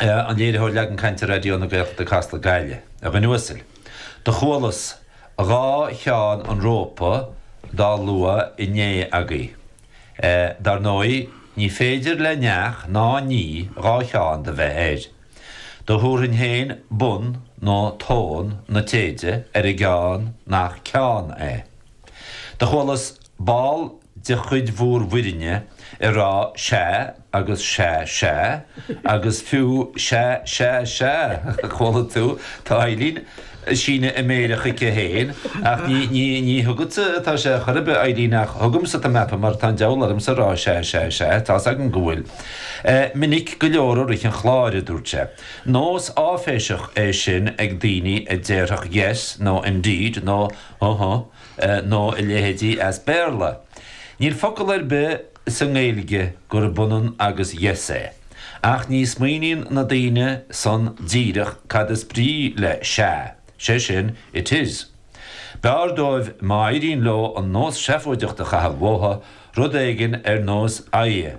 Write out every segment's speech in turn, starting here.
an léiritheoir leagan cainte Raidió na Gaeltachta Casla, Gaillimh. A dhuine uasail. Do chualas dhá cheann an rópa dá lua inné agaibh. Dar ndóigh, ní féidir le neach ná ní dhá cheann do bheith air. Do thabharfainn féin bun nó tón na téide ar an gceann nach ceann é. Do chualas ball de chuid bhúr bhfoirinne ag rá sea agus sea sea agus fiú sea sea sea a chuala tú, tá Eileen ag síneadh na méire chuici féin, ach ní, ní, ní chugatsa atá sé chor ar bith, Eileen, ach chugamsa tá mé ag ceapadh mar tá an deabhal ormsa ag rá sea sea sea, tá's agam go bhfuil. Minic go leor i rith an chláir, a dúirt sé. Nós áiféiseach é sin ag daoine a déarfadh yes nó indeed nó Uh-huh. nó a leithéidí as Béarla. Níl focal ar bith sa nGaeilge gurb ionann agus yes é. Ach ní smaoiníonn na daoine san díreach cad is brí le sea, sé sin, it is. B'fhearr dóibh má éiríonn leo an nós seafóideach a chaitheamh uathu, rud éigin ar nós aha.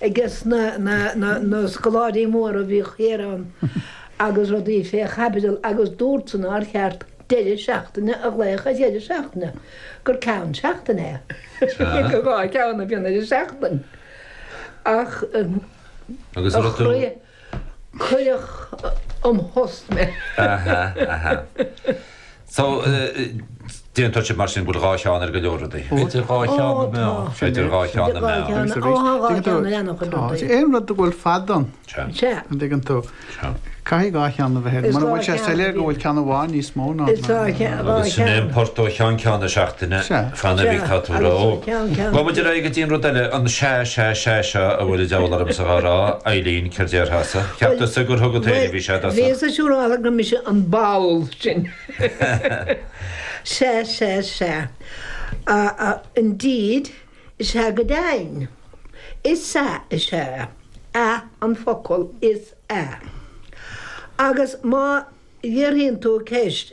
Agus na na na na scoláirí móra a bhíodh thiar ann agus rudaí fé chaibidil agus dúirt san nár cheart deireadh seachtaine a ghlaoch ar dheireadh seachtaine, gur ceann seachtaine é. Sea. Gur dhá cheann a bhíonn ar an seachtain. Ach Agus a rud tú, chroí. Cuireadh an phost mé. Aha, aha. So, d'aontódh sibh mar sin go bhfuil dhá cheann ar go leor rudaí. Idir dhá cheann na meá. Idir dhá cheann na meá. Agus arís, tá aon rud a bhfuil fad ann, an dtuigeann tú, caithfidh dhá cheann a bheith air. Mura bhfuil sé soiléir go bhfuil ceann amháin níos mó ná na meá. Agus sin é an port ó cheann ceann na seachtaine. Fan ar bith, tá tú ró. Gabhfaidh muid ar aghaidh go dtí an rud eile, an sea, sea, sea seo a bhfuil an diabhal ormsa dhá rá, Eileen, céard déarfása? Cheap tusa gur chugat féin a bhí sé do sa. Bhíos siúráilte gur mise an ball sin. Sea, sea, sea. Indeed, is ea go deimhin. Is ea, is ea. Ea an focal, is ea. Agus má fhiafraíonn tú ceist,